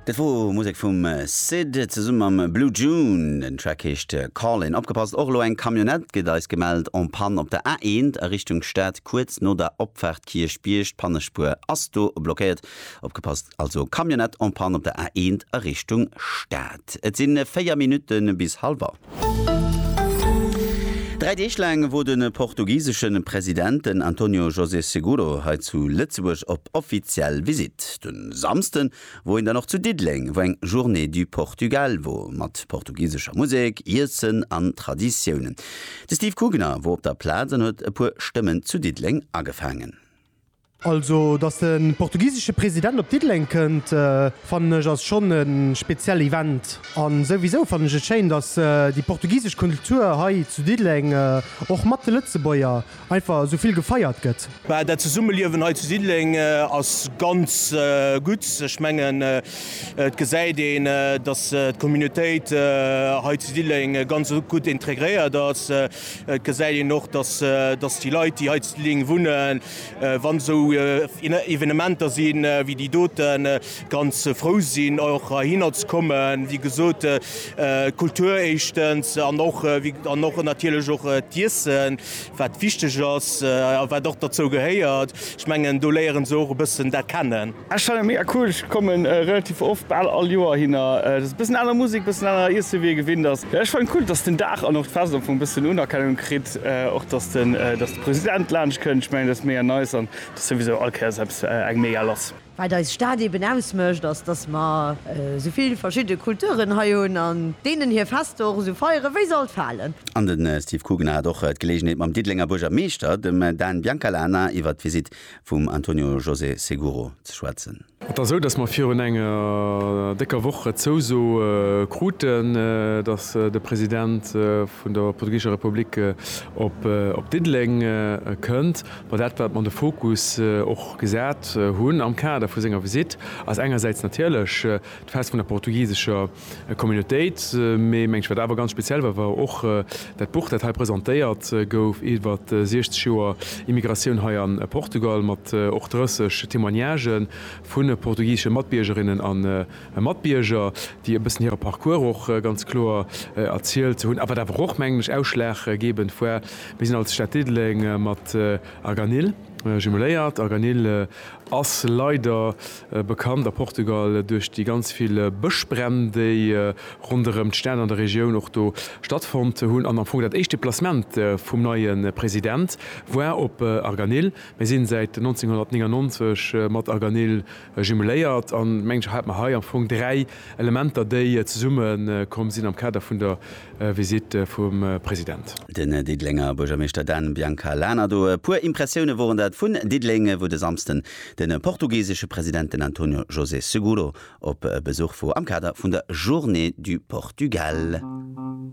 Dat wor Musek vum Syd zesumme mam Blue June. Den Track heescht Callin'. Opgepasst, och elo eng Camionnette gëtt eis gemellt en Panne op der A1 a Richtung Stad, kuerz no der Opfaart Kierchbierg. D'Pannespuer ass do blockéiert. Opgepasst also, Camionnette en Panne op der A1 a Richtung Stad. Et si 4 Minutte bis halwer. Dräi Deeg laang wor den portugiseschen Presidenten Antonio José Seguro hei zu Lëtzebuerg op offiziell Visitt. Den Samsden wor hien dann och zu Diddeleng wou eng Journée du Portugal wor mat portugisescher Musek, Iessen an Traditiounen. De Steve Kugner wor op der Plaz an huet e puer Stëmmen zu Diddeleng agefaangen. Also dass de portugisesche President op Diddeleng kënnt fannen ech ass schonn e spezielle Event. An souwisou fannen ech et schéin, dass déi portugisesch Kultur hei zu Diddeleng, och mat de Lëtzebuerger, einfach esou vill gefeiert gëtt. Bah, dat Zesummeliewen hei zu Diddeleng ass ganz gutt. Ech mengen et gesäit een, dass d'Communautéit hei zu Diddeleng ganz gutt integréiert ass. Et gesäit een och, dass déi Leit, déi hei zu Diddeleng wunnen, Wann esou Evenementer sinn wéi déi doten, ganz frou sinn och heihinner ze kommen. Wéi gesot, d'Kultur éischtens an och an och natierlech och d'Iessen, wat wichteg ass a wat och derzou gehéiert. Ech mengen, do léieren se och e bëssen dat kennen. Ech fannen mega cool, ech kommen relativ oft, bal all Joer hinner. Et ass e bëssen aner Musek, bëssen aner Iessen wéi ee gewinnt ass. Ech fannen cool, dass den Dag an och d'Fest am Fong e bëssen Unerkennung kritt, och dass den President laanscht kënnt. Ech mengen, dat ass mega nice an et ass souwisou all Kéiers eppes, eng mega lass. Wat eis Stad eben ausmécht, ass, dass mer esou vill verschidde Kulturen hei hunn an deenen hir Fester och esou feieren, wéi se alt falen. An de Steve Kugner hat och d'Geleegenheet mam Diddelenger Buergermeeschter, dem Dan Biancalana, iwwert d'Visitt vum Antonio José Seguro ze schwätzen. Et ass esou, datt mer virun enger décker Woch d'Zouso kruten, datt de President vun der portugisescher Republik op Diddeleng kënnt. Mä dat, wat mer de Fokus och gesat hunn am Kader vu senger Visitt, ass engersäits natierlech d'Fest vun der portugisescher Communautéit. Mee mengt ech, wat awer ganz speziell war, war och dat Buch, dat hei presentéiert gouf iwwer 60 Joer Immigratioun hei a Portugal, mat och 30 Témoignagë vu portugisesche Matbiergerinnen a Matbierger, déi e bëssen hire Parcours och ganz kloer erzielt hunn. A wat awer och, mengen ech, ausschlaggebend war, Mir sinn als Stad Diddeleng mat Arganil jumeléiert. Arganil ass leider Bekannt a Portugal duerch déi ganz vill Bëschbränn, déi ronderëm d'Stad an der Regioun och do stattfonnt hunn. An am Fong dat éischt Deplacement vum neie President war op Arganil. Mir sinn säit 1999 mat Arganil jumeléiert an mengen ech hat mer hei am Fong dräi Elementer, déi zesumme komm sinn am Kader vun der Visitt vum President. Den Diddelenger Buergermeeschter Dan Bianca Lana do. E puer Impressioune woren dat vun Diddeleng, wou de Samsden de portugisesche President, den Antonio José Seguro, op Besuch wor am Kader vun der Journée du Portugal.